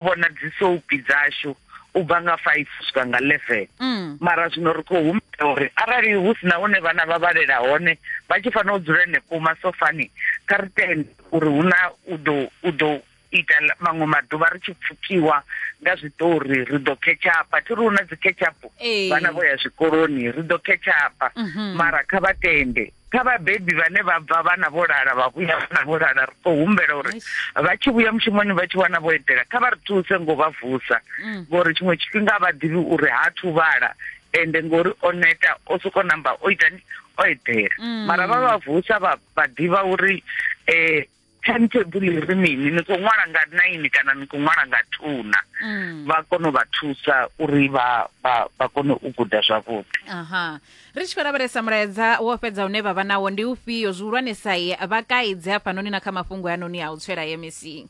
vhona dzi soapi dzashu u bva nga five swika nga eleven mm. mara zwino ri khou humbela uri arali hu si na hune vhana vha vhalela hone vha tshi fanela u dzula henefho masofani kha ri tende uri hu na u ḓo u ḓo ita maṅwe maḓuvha ri tshi pfukiwa nga zwiṱori ri ḓo ketshapa thi ri hu na dzi ketshapo vhana vho ya zwikoloni ri ḓo ketshapa mhm. mara kha vha tende kha vhabebi vhane vha bva vhana vho lala vha vhuya vhana vho lala ri khou humbela uri vha tshi vhuya mushumoni vha tshi wana vho edela kha vha ri thuse ngo vha vusa mm. ngori tshiṅwe tshifhinga vha ḓivhi uri ha thu vhala ende ngori o neta o soko namba o itani o edela mm. mara vha vha vusa vha vha ḓivha uri eh timetable ri mini ni khou ṅwala nga nine kana ni khou ṅwala nga two na mm. vha kone u vha thusa uri vha vha vha kone u guda zwavhuḓi aha ri tshi khou lavhelesa mulaedza wo fhedza une vha vha nawo ndi ufhio zwihulwanesa vha kaidze hafhanoni na kha mafhungo anoni a u tswela mec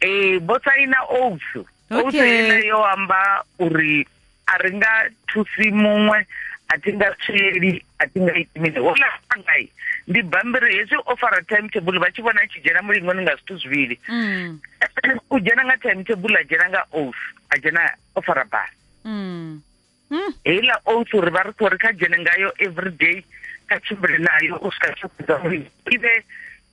ee vho saina oats oats ine yo amba uri a ri nga thusi muṅwe a thi nga tsweli a thi nga iti mini hola ngai ndi bambiri hezwi o fara time table vha tshi vhona a tshi dzhena mulingoni nga zwithu zwivhili mm. u dzhena nga time table a dzhena nga oats a dzhena o fara basi mm. hmm. heiḽa oath uri vha ri khou ri kha dzhene ngayo everyday kha tshimbile nayo u swika tshakuza uri i vhe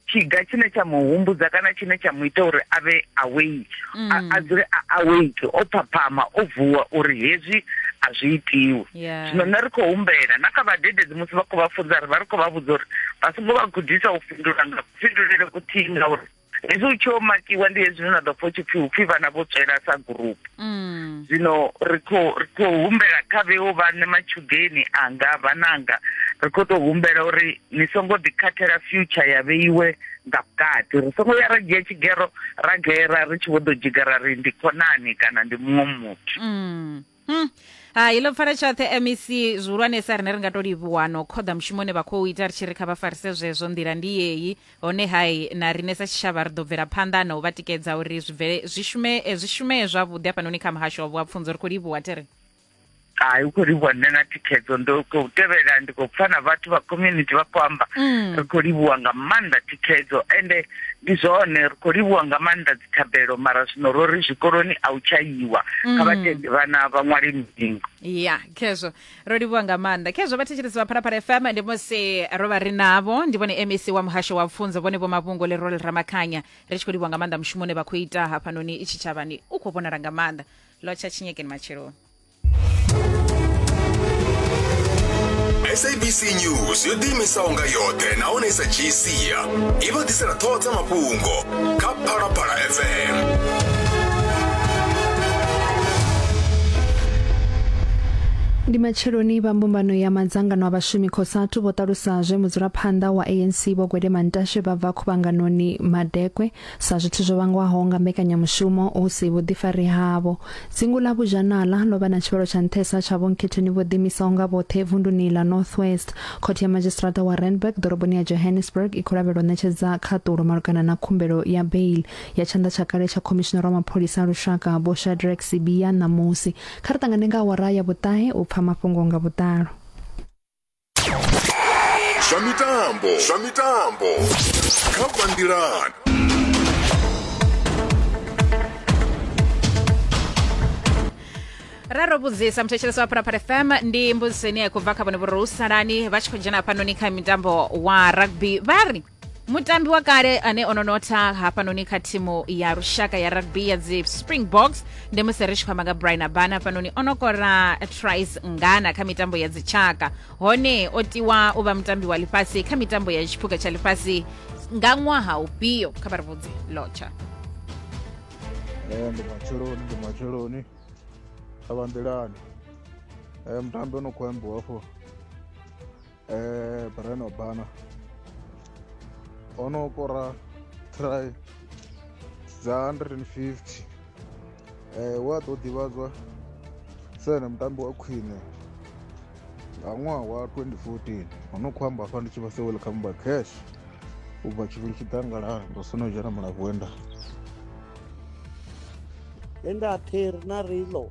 tshiga tshine tsha mu humbudza kana tshine tsha mu ita uri a vhe awake a hmm. dzule a awake o phaphama o vuwa uri hezwi a zwi itiwi zwino nṋe ri khou humbela na kha vhadededzi musi vha khou vha funza ri vha ri khou vha vhudza uri vha songo vha gudisa u fhindula nga kufhindulele kuthihi ngauri hezwi u tshi o makiwa ndi hezwi na ḓo pfa tshi pfi upfi vhana vho tswela sa group mm. zwino ri khou ri khou humbela kha vheo vhane matshudeni anga vhananga ri khou tou humbela uri ni songo ḓikhathela future ya vheiwe nga vhukati ri songo ya ra dzhia tshigero ra gera ri tshi vho ḓo dzhigara ri ndi khonani kana ndi muṅwe muthu mm. Hmm. hai ḽo pfala tshoṱhe mec zwihulwanesa rine ri nga to livhuwa no khoḓa mushumo une vha khou ita ri tshi ri kha vha farise zwezwo nḓila ndi yeyi hone hai na rine sa tshitshavha ri ḓo bvela phanḓa na u vha tikedza uri zwi bvele zwi shume eh, zwi shumee zwavhuḓi hafhanoni kha muhasho wa vhuapfunzo ri khou livhuwa tere hai u khou livhuwa nṋe na thikhedzo ndo khou tevhela ndi khou pfa na vhathu vha community vha khou amba mm. ri khou livhuwa nga maanḓa thikhedzo ende ndi zwone ri khou livhuwa nga maanḓa dzithabelo mara zwino ro ri zwikoloni a u tsha yiwa kha vhatendi mm. vhana vha ṅwale milingo ya khezwo ro livhuwa nga maanḓa khezwo vhathetshelesi vha phalaphala fm ndi musi ro vha ri navho ndi vhone mec wa muhasho wa pfunzo vhone vho mavhungo le role ramakhanya ri tshi khou livhuwa nga maanḓa mushumo une vha khou ita hafhanoni i tshitshavhani u khou vhonala nga maanḓa lotsha tshinyekeni matsheloni sabc news yo ḓiimisaho nga yoṱhe nahone i sa dzhii sia i vha ḓisela ṱhoho dza mafhungo kha phalaphala fm ndi matsheloni vha mbumbano ya madzangano a vhashumi khosatu vho ṱalusa zwe mudzulaphanḓa wa anc vho gwede mantashe vha bva khuvhanganoni madekwe Sa zwithu zwo vhangwaho nga mbekanyamushumo hu si vhuḓifari havho, dzingu ḽa Buzhanala ḽo vha na tshivhalo tsha nṱhesa tsha vhonkhethoni vho ḓiimisaho nga vhoṱhe vunduni ḽa North West. Khothe ya Madzhisiṱiraṱa wa Randburg ḓoroboni ya Johannesburg i khou lavhelwa u ṋetshedza khaṱulo malugana na khumbelo ya bail ya tshanḓa tsha kale tsha Khomishinara wa Mapholisa a Lushaka Vho Shadrack Sibiya ṋamusi. Kha ri ṱangane nga awara ya vhuṱahe u pfa mafhungo nga vhuḓalo. zwa mitambo zwa mitambo kha bandirani ra ro vhudzisa muthetshelesi wa pharapara fm ndi mbudziso ine ya khou bva kha vhone vhori hu salani vha tshi khou dzhena hafhanoni kha mitambo wa rugby vha ri mutambi wa kale ane o no notha hafhanoni kha thimu ya lushaka ya rugby ya dzi springboks ndi musi ri tshi khou amba nga brian abana hafhanoni o no kora tris ngana kha mitambo ya dzitshaka hone o tiwa u vha mutambi wa ḽifhasi kha mitambo ya tshiphuga tsha ḽifhasi nga ṅwaha ufhio kha vha ri vhudze lotsha ndi matsheloni ndi matsheloni a vha nḓilani mutambi o no khou ambiwa afho eh Brian Obana o no kora try dza 150 eh wa ḓo ḓivhadzwa sa ene mutambi wa khwine nga ṅwaha wa 2014 ho no khou amba hafha ndi tshi vha se welcome by cash u bva tshivhili tshiḓangalala ndo sona u dzhena mulavhuenda Enda Ter Narilo.